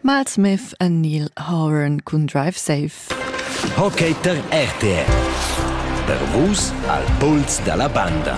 Mal Smith e Neil Horan cun Drive Safe. Hockey per RTR. Per vus al puls dalla banda.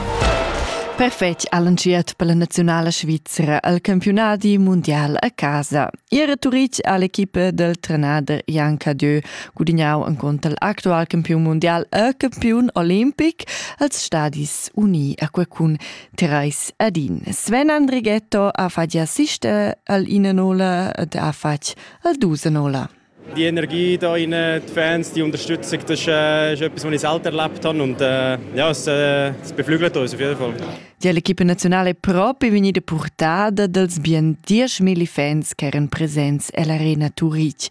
Perfetg allanciert per la nazionala svizra al campionadi mundial a casa. Iera Turitg ha l'equipa del trenader Jan Cadieu gudignau en conto l'actual campiun mundial e campiun olimpic als Stadis Uni a qualcun Treis adin. Sven Andrighetto ha fatg assiste al inenola ed ha fatg al dusenola. Die Energie da in die Fans, die Unterstützung, das ist, äh, ist etwas, was ich selten erlebt habe und äh, ja, es, äh, es beflügelt uns auf jeden Fall. Ja, l'equipe nazionale è proprio vegnida portata dals bien 10.000 fans che erano presenti all'Arena Turic.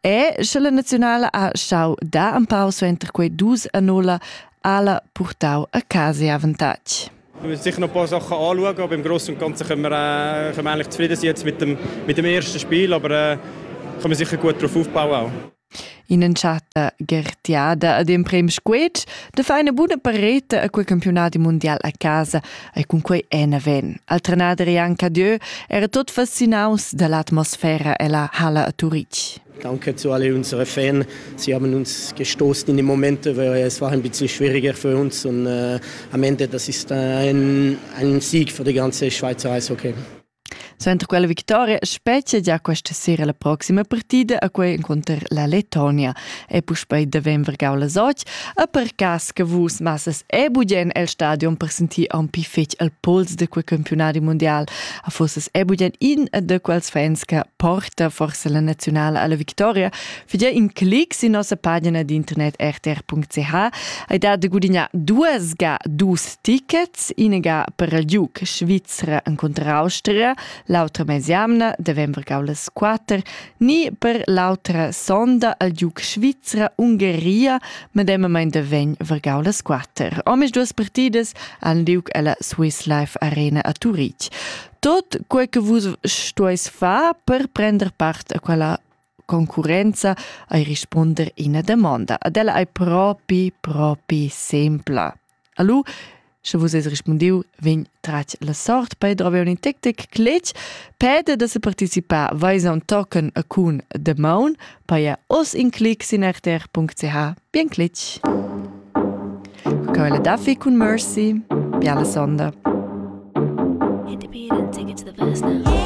E sche la nazionale ha schau da un pau suenter quei dus a nulla ala purtau a casa avantatg. Sicher noch ein paar Sachen anschauen, aber im Großen und Ganzen können wir, äh, können wir eigentlich zufrieden sein jetzt mit dem, mit dem ersten Spiel, aber äh, kann man sicher gut darauf aufbauen auch. In entschatta gartiada ad emprem squetsch, de fa ina buna pareta a quei campionati mondial a casa e cun quei ena ven. Al trenader Jan Cadieu era tot fascinaus dall'atmosfera e la halla a Turitg. Danke zu alle unsere Fans. Sie haben uns gestoßen in dem Moment, weil es war ein bisschen schwieriger für uns und äh, am Ende das ist ein, ein Sieg für die ganze Schweizer Eishockey. Senza quella vittoria, specie già questa sera la prossima partita, a quei incontro la Letonia. E puspei devem vergau la soc, a per cas che vus masses e budien el stadion per sentì un pi fetg al pols de quei campionati mondial. a fosses è bugen in de quels fans che porta forse la nazionale alla victoria fidia in click sin nossa pagina di internet rtr.ch hai da de gudignar duas ga dus tickets in ga per il Duke Svizzera incontro Austria l'autra mesiamna novembre gaulas 4 ni per l'autra sonda al duc Svizra Ungaria medemamain vegn vargau las quatter. Omes duas partidas han liug ella Swiss Life Arena a Turitg. Tot quei che vus stueis far per prender part a quella concurenza ai risponder ina domanda. Ad ella ei propi, propi sempla. Alu, sche vus eis rispundiu, vegn tratg la sort per drover un tectic cletg, pede da se participar weis on token a cun de maun, paia os in clic sin rtr.ch, bien cletg. Quella Duffy cun Mercy, biala sonda. Independent ticket to the verse now.